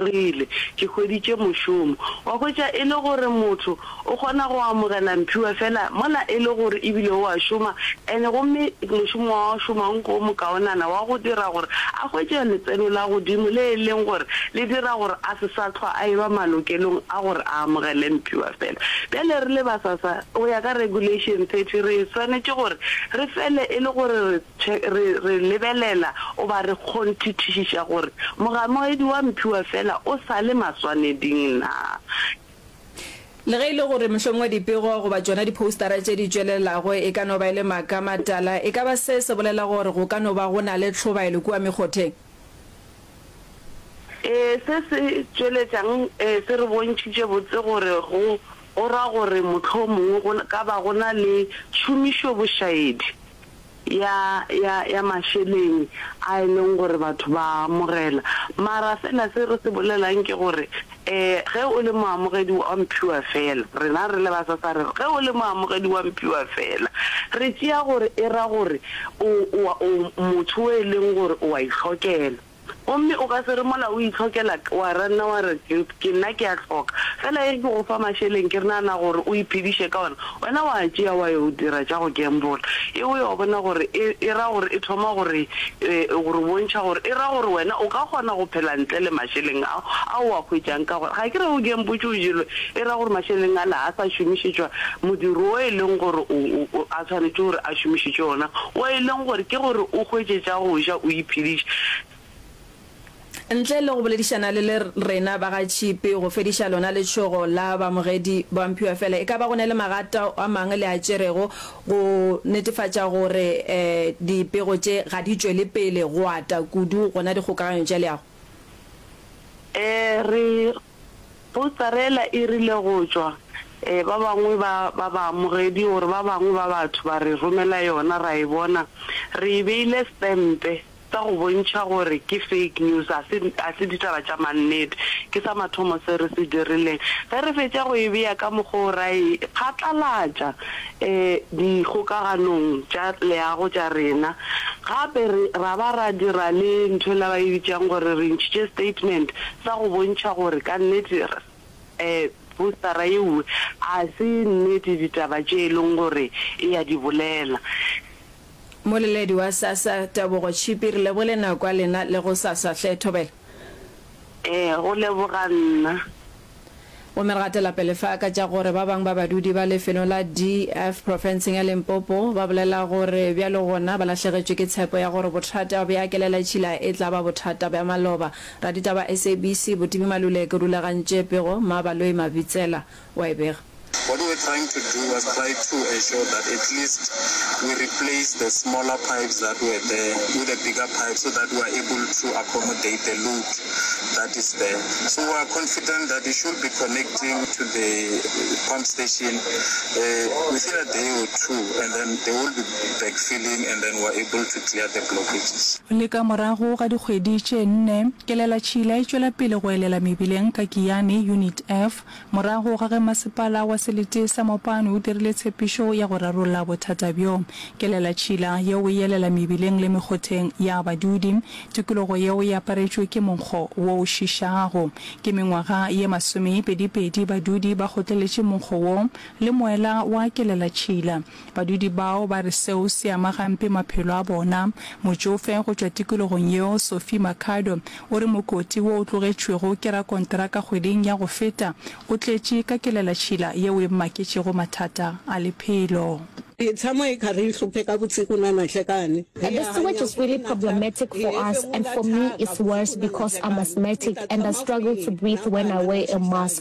Rile, Ke hweditše mošomo. Wa hwetša, e le gore motho o kgona go amogela mphiwa feela mola e le gore e bile o a šoma, and gomme mošomo wa go šomang go mokaonana wa go dira gore a hwetše letseno la godimo le e leng gore le dira gore a se sa hlwa a eba malokelong a gore a amogele mphiwa feela. Bjale re le ba SASSA, go ya ka Regulation 30, re swanetše gore re fele e le gore re Che, re, re lebelela, o ba re kgonthithešiša gore mogamoedi wa mphiwa feela o sa le maswaneding naa. Le ge e le gore mohlomongwe dipego goba tšona diphoustara tše di tšwelelago e ka no ba e le maaka a matala, e ka ba se se bolela gore go ka no ba go na le tlhobaelo kua mekgotheng? Ee, se se tšweletšang ee se re bontšhitše botse gore go, go ra gore mohlomongwe go ka ba go na le tšhomišobošaedi. ya, ya, ya mašeleng a e leng gore batho ba a amogela. Mara feela se re se bolelang ke gore, eh, ge o le moamogedi wa mphiwa feela, rena re le ba SASSA re re, ge o le moamogedi wa mphiwa feela, re tšea gore e ra gore o, o a, o motho o e leng gore o a ihlokela. Gomme o ka se re mola o itlhokela k, wa ranna wa re, Ke, ke nna ke a hloka. Fela e re ke go fa mašeleng ke re nagana gore o iphediše ka ona, wena wa a tšea wa yo dira tša go gambola. E, o yo bona gore e, e ra gore e thoma go re, e, go re bontšha gore e ra gore wena o ka kgona go phela ntle le mašeleng ao, ao o a hwetšang ka gore ga ke re o gambotše o jelwe, e ra gore mašeleng ale ga a sa šomišetšwa modiro wo e leng gore o, o, o, a swanetše gore a. a šomišitše ona, wa e leng gore ke gore o hwetše tša go ja o iphediše. Ntle le go boledišana le le rena ba ga Tšhipi go fediša lona letšhogo la baamogedi ba mphiwa fela e ka ba go na le magata a mangwe le a tšerego go netefatša gore dipego tše ga di tšwele pele go ata kudu gona dikgokaganyo tša leago? Ee, re Postarela e rile go tšwa ba bangwe ba ba baamogedi gore ba bangwe ba batho ba re romela yona ra e bona re e beile stempe sa go bontšha gore ke fake news ga se ga se ditaba tša mannete ke sa mathomo se re se dirileng ge re fetša go e bea ka mokgwa o ra e phatlalatša dikgokaganong tša leago tša rena gape ra ba ra dira le ntho e la ba e bitšang gore re ntšhitše statement sa go bontšha gore ka nnete postara yeo a se nnete ditaba tše e leng gore e a di bolela. Moleledi wa SASSA, Tebogo Tshipi, re lebogile nako ya lena le go SASSA. Hle Thobela. Ee, go leboga nna. Gomme re gatela pele fa ka tša gore ba bang ba badudi ba lefelo la DF profenseng ya Limpopo ba bolela gore bjalo gona ba lahlegetšwe ke tshepo ya gore bothata bja kelelatšhila e tla ba bothata bja maloba. Raditaba SABC Botibi Maluleke o rulagantše pego ma Baloyi Mabitsela wa e bega. What we're trying to do was try to ensure that at least we replace the smaller pipes that were there with a bigger pipe so that we are able to accommodate the load. that is there so we are confident that it should be connecting to the pump station uh, within a day or two and then they will be backfilling and then we're able to clear the blockages. Le ka morago ga dikgwedi tše nne, kelela tšhila e tšwela pele go elela mebileng ka Kiani Unit F, Morago ga ge masepala wa selete sa Mopane o dirile tshepišo ya go rarolla bothata bjo, kelela tšhila yeo e elela mebileng le mekgotheng ya badudi, tikologo yeo e aparetšwe ke monkgo wo o šišago. Ke mengwaga ye masomepedipedi badudi ba kgotleletše monkgo wo le moela wa kelela tšhila. Badudi bao ba re seo se ama gampe maphelo a bona. Motšofe go tšwa tikologong yeo, Sophie Makhado, o re mokoti wo o tlogetšwego ke rakonteraka kgweding ya go feta o tletše ka kelelatšhila yeo e mmaketšego mathata a lephelo. The sewage is really problematic for us and for me it's worse because I'm asthmatic and I struggle to breathe when I wear a mask.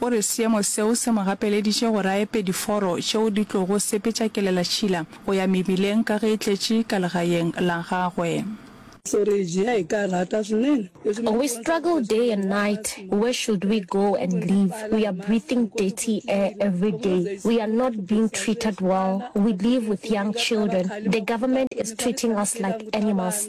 O re seemo seo se mo gapeleditše gore a epe diforo tšeo di tlogo sepetša kelelatšhila go ya mebileng ka ge e tletše ka legaeng la gagwe. We struggle day and night, where should we go and live, we are breathing dirty air everyday, we are not being treated well, we live with young children, the government is treating us like animals.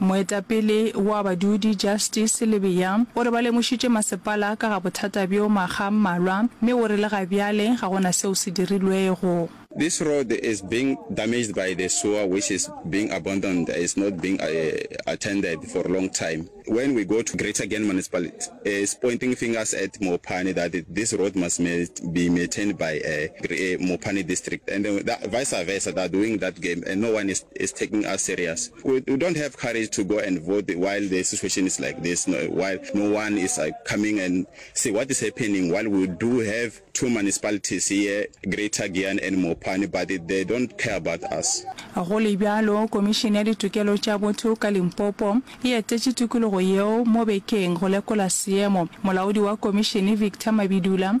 Moetapele wa badudi Justice Lebeya o re ba lemošitše masepala ka ga bothata bjo makga a mmalwa mme o re le ga bjale ga go na seo se dirilwego. This road is being damaged by the sewer which is being abandoned, is not being attended for long time. When we go to Greater Gen Municipality is pointing fingers at Mopane that this road must be maintained by Mopane District and vice versa they are doing that game and no one is taking us serious. We we don't have courage to go and vote while the situation is like this, no, while no one is uh, coming and see what is happening. While we do have two municipalities here, Greater Giyani and Mopani, but it, they don't care about us. Go le bjalo, Komišene ya Ditokelo tša Botho ka Limpopo e etetše tikologo yeo mo bekeng go lekola seemo. Molaodi wa komišene Victor Mabidula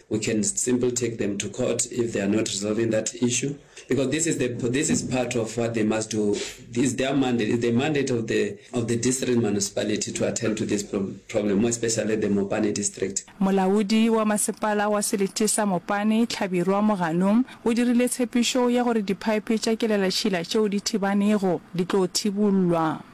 We can simply take them to court if they are not resolving that issue because this is the this is part of what they must do. Is their mandate, is the mandate of the of the district municipality to attend to this pro problem, more especially the Mopane district. Molaodi wa masepala wa selithe sa Mopane, Tlhabirwa Mogano, o dirile tshepišo ya gore diphaephe tša kelelatšhila tšeo di thibanego di tlo thibollwa.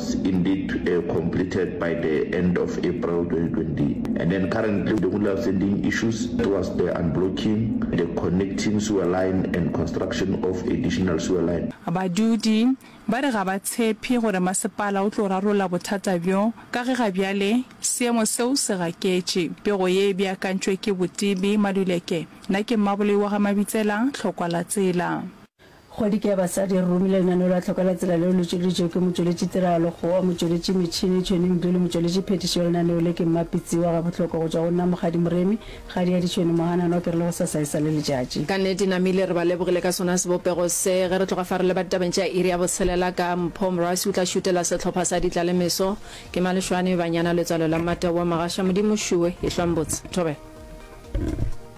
was indeed uh, completed by the end of April 2020. And then currently the only outstanding issues was the unblocking, the connecting sewer line and construction of additional sewer line. Badudi ba re ga ba tshephe gore masepala o tlo rarolla bothata bjo ka ge ga bjale seemo seo se gaketše. Pego ye e beakantšwe ke Botibi Maluleke. Na ke Mmaboloi wa ga Mabitsela, Tlhokwalatsela. Kgwedi ke ya basadi e re romile lenaneo la tlhoka la tsela leo le tšweleditšego ke motšweletši tiragalo Kgowa, motšweletši metšhini Tšhweni Mdu le motšweletši phethiši wa lenaneo le ke Mmapitsiwa. Gabohlokwa go tšwa go nna Mokgadi Moremi, kgadi ya Ditšhweni Mohananwa ke re le go sasa e sa le letšatši. Ka nnete namile re ba lebogile ka sona sebopego se. Ge re tloga fa re leba ditabeng tša iri ya botshelela ka Mpho Morasi o tla šutela sehlopha sa Ditlalemeso ke Malešwane Banyana letswalo la Mmateboa Magasha Modimo Šue Ehlwa Mbotse Thobela.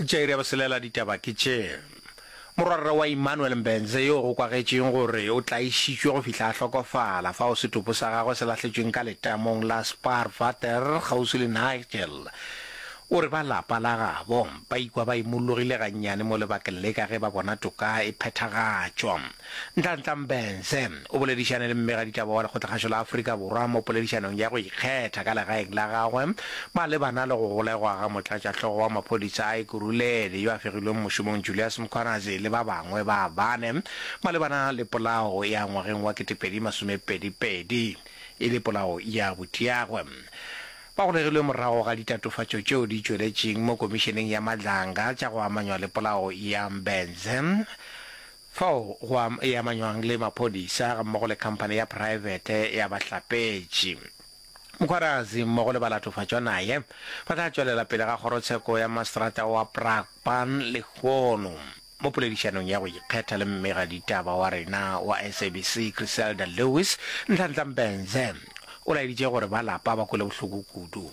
Jair ya boselela ditaba ke tše. Morwarra wa Immanuel Mbenze yo go kwagetšeng gore o tlaišitšwe go fihla a hlokofala fao setopo sa gagwe se lahletšweng ka letamong la Spaarwater kgauswi le Nigel, o re ba lapa la gabo ba ikwa ba imollogile gannyane mo lebakeng le ka ge ba bona toka e phethagatšwa. Nhlanhla Mbhense o boledišane le mmegaditaba wa Lekgotlakgašo la Afrika Borwa mo poledišanong ya go ikgetha ka legaeng la gagwe malebana le go golegwa ga motlatšahlogo wa maphodisa a Ekurhuleni yo a fegilweng mošomong Julius Mkhwanazi le ba bangwe ba bane malebana le polao ya ngwageng wa 2022 e le polao ya botiagwe. Ba golegilwe morago ga ditatofatšo tšeo di tšweletšeng mo Komišeneng ya Madlanga tša go amanywa le polao ya Mbhense. Fao go am, e amanywang le maphodisa gammogo le khamphane ya praebete ya bahlapetši. Mokgwarazi mmogo le balatofatšwa naye ba tla tšwelela pele ga kgorotsheko ya maseterata wa Brakpan lehono. Mo poledišanong ya go ikgetha le mmega ditaba wa rena wa SABC Criselda Lewis, Ntlhantlha Mbhenze o laeditše gore ba lapa ba kwele bohloko kudu.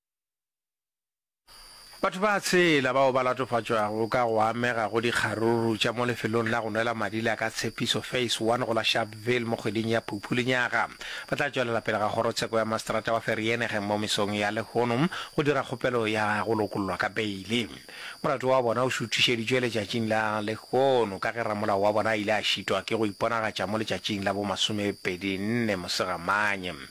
Batho ba a tshela bao ba latofatšwago ka go amega go dikgaruru tša mo lefelong la go nwela madi la Ka Tshepiso Phase One go la Sharpeville mo kgweding ya Phuphu lenyaga ba tla tšwelela pele ga Kgorotsheko ya Maseterata wa Vereeniging mo mesong ya lehono go dira kgopelo ya go lokollwa ka beile. Molato wa bona o šuthišeditšwe letšatšing la lehono ka ge ramolao wa bona a ile a šitwa ke go iponagatša mo letšatšing la bo masomepedinne Mosegamanye.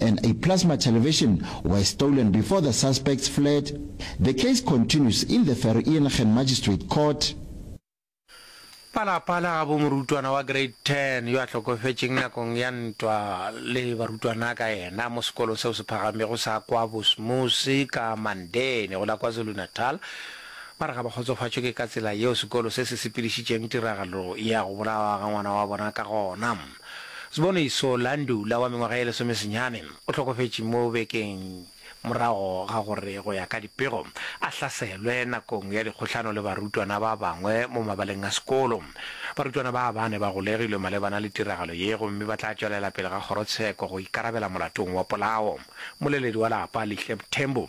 and a plasma television were stolen before the suspects fled. The case continues in the Vereeniging Magistrate Court. Palapala gabo morutwana wa grade 10 yo a hlokofetšeng nakong ya ntwa le barutwana ka yena mo sekolo seo se phagamego sa kwa Bosmose ka Mandeni go la KwaZulu-Natal ba re ga ba kgotsofatšwe ke ka tsela yeo sekolo se se sepedišitšeng tiragalo ya go bolawa ga ngwana wa bona ka gona. Sboniso, Landu, la wa mengwaga e lesomesenyane, o hlokofetše mo bekeng morago ga gore, go ya ka dipego, a hlaselwe nakong ya dikgohlano le barutwana ba bangwe mo mabaleng a sekolo. Barutwana ba ba ne ba golegilwe malebana le tiragalo ye gomme ba tla tšwelela pele ga kgorotsheko go ikarabela molatong wa polao. Mmoleledi wa lapa, Lihleb Tembu,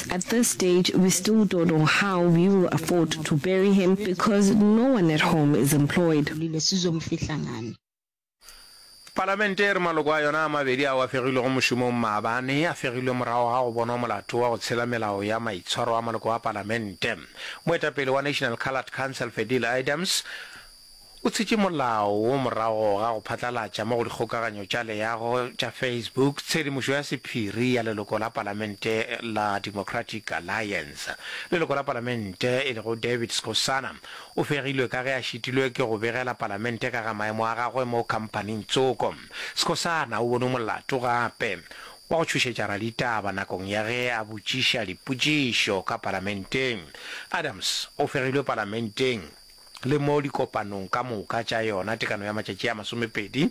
At this stage we still don't know how we will afford to bury him because no one at home is employed. Palamente e re maloko a yona a mabedi ao a fegilwego mošomong maabane a fegilwe morago ga go bonwa molato wa go tshela melao ya maitshwaro a maloko a palamente. Moetapele wa National Coloured Council Fedile Idams, O tshitše molao wo morago ga go phatlalatša mo go dikgokaganyo tša leago tša Facebook tshedimošo ya sephiri ya leloko la palamente la Democratic Alliance. Leloko la palamente e lego David Skosana o fegilwe ka ge a šitilwe ke go begela palamente ka ga maemo a gagwe mo khampaning Tsoko. Skosana o bonwe molato gape wa go tšhošetša raditaba nakong ya ge a botšiša dipotšišo ka palamenteng. Adams o fegilwe palamenteng. le mo dikopanong ka moka tša yona tekano ya matšatši a masomepedi,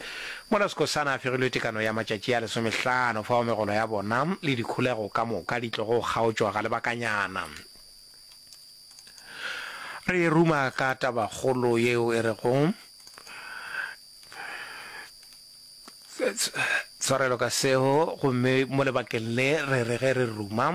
mola Skhosana a fegilwe tekano ya matšatši a lesomehlano, fao megolo ya bona le dikholego ka moka di tlogo kgaotšwa ga lebakanyana. Re ruma ka tabakgolo yeo e rego, Tshwarelo ka seo, gomme mo lebakeng le re re ge re ruma,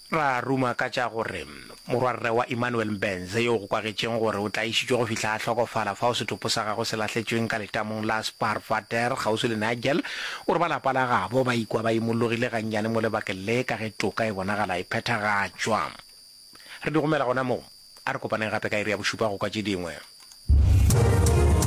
ra ruma ka tša gore Morwarre wa Immanuel Mbenze, yo go kwagetšeng gore o tlaišitšwe go fihla a hlokofala fao setopo sa gagwe se lahletšweng ka letamong la Spaarwater kgauswi le Nigel, o re ba lapa la gabo ba ikwa ba imologile gannyane mo lebakeng le ka ge toka e bonagala e phethagatšwa. Re di romela gona moo. A re kopaneng gape ka iri ya bošupa go kwa tše dingwe.